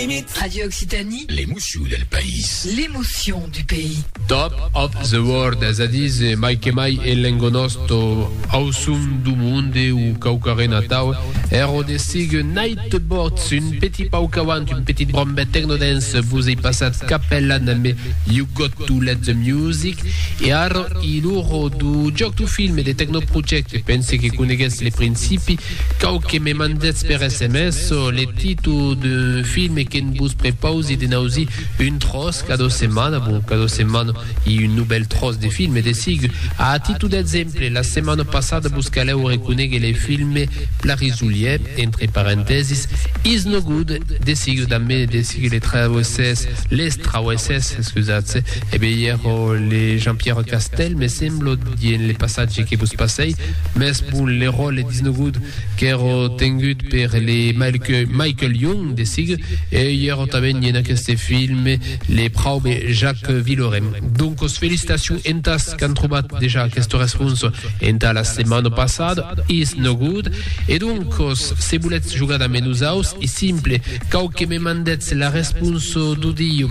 Emit. Radio Occitanie. L'emocion del país. L'emocion du pays. Top of the World, es a dire se mai que mai e l'engonòsto auçon du monde o quauquarren atau, ero de sigue Nightboards, un petit pauc avant, un petit brombet technodance, vos ei passat Capella na me You Got To Let The Music, e ara i l'oro du jòc du film e de Technoproject, pense que coneguètz le principi, Cau que me mandetz per sms le títol d'un film e que'n vos prepausi de n'ausir un tròç cada setmana, bon, cada setmana i un novèl tròç de film, de sigur. A títol d'exemple, la setmana passada vos calèu reconéguer le film Plarisolier, entre parentèsis, Is No Good, de sigur damb de sigur le trauessés, les trauessés, excusatz, e be i èra le Jean-Pierre Castel, me semblo, dient le passatge que vos passèi, Mès bon, le ròle disnogut qu'èro tengut per le Michael Young de sig, e i èro tanben en aqueste filme, le praube Jacques Villeurène. Doncos felicitacions entàs qu'an trobat dejà aqueste respons entà la setmana passada, isnogut. E doncos, se volètz jogar damb nosaus, es simple, cau que me mandètz la respons d'audio.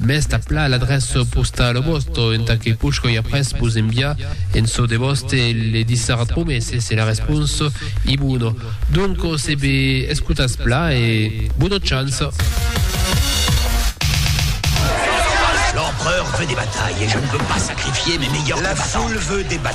Mès tà pla l'adrèça postala vòsta entà que poshoi après vos enviar en çò de vòste le dissart promese se la responsa i bona. Donc se be escotatz pla e bona chance! L'empereur veut des batailles et je ne veux pas sacrifier mes meilleurs combattants. La foule veut des batailles.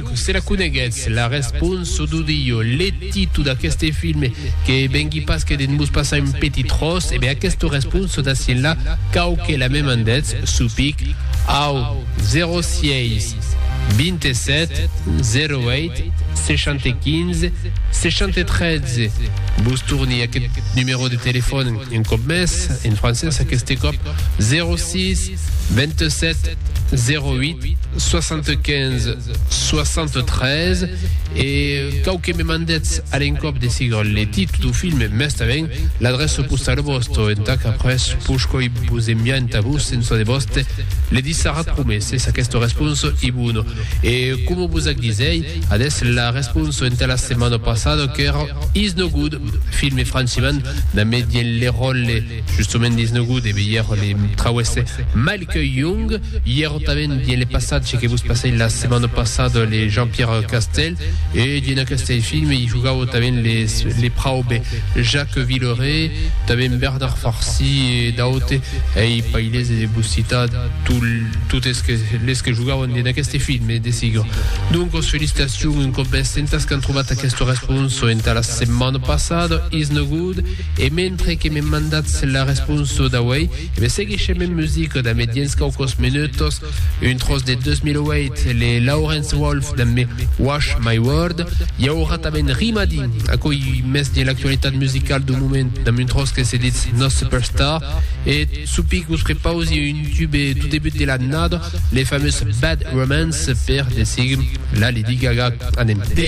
Se la coneguètz, la respons çò d'o dilho, le titu d'aqueste film, que vengui pas que de mos passar un petit tròç, e ben aquesta respons çò d'aciu là, cau que la me mandètz, supic, au 06 27 08 75 73. Vos torni aquest numèro de telefòn un còp mès, en francés, aqueste còp 06 27 08 75 73 e cau que me mandetz a l'encòp de siga le títol du film mès tanben l'adrèça postala vòsta entà qu'après poscoi vos enviar entà vos en çò de vòste le dissarat promés es aquesta responsa i bona e coma vos ac disèi adés la responsa entà la setmana passada qu'èra Is No Good filme francimant damb Étienne Lérol e Justement dins lo gout de veire le trauesse Malky Young, ièro tanben dins le passatge que vos passèi la setmana passada le Jean-Pierre Castel, e dins aqueste film i jogau tanben les le praube Jacques Villeray, tanben Bernard Farcy e d'aute, ei pailese de vos citar tout totes que les que jogauen dins aqueste film, e desigur. Doncos felicitacion un còp mès entas qu'an trobat aqueste responso entà la setmana passada, is no gout. E mentre que me mandatz la responsa d'auei, me seguishem en musica damb dens quauquos menutos un tros de 2008 le Lawrence Wolf damb Wash My World. I aurà tanben Rimadi, aquò i mès de l'actualitat musicala dau moment damb un tros que se ditz No Superstar. E sopi qu'os prepausi un tube dau debut de l'annada, le famós Bad Romance per de seguir la Lady Gaga. Anem.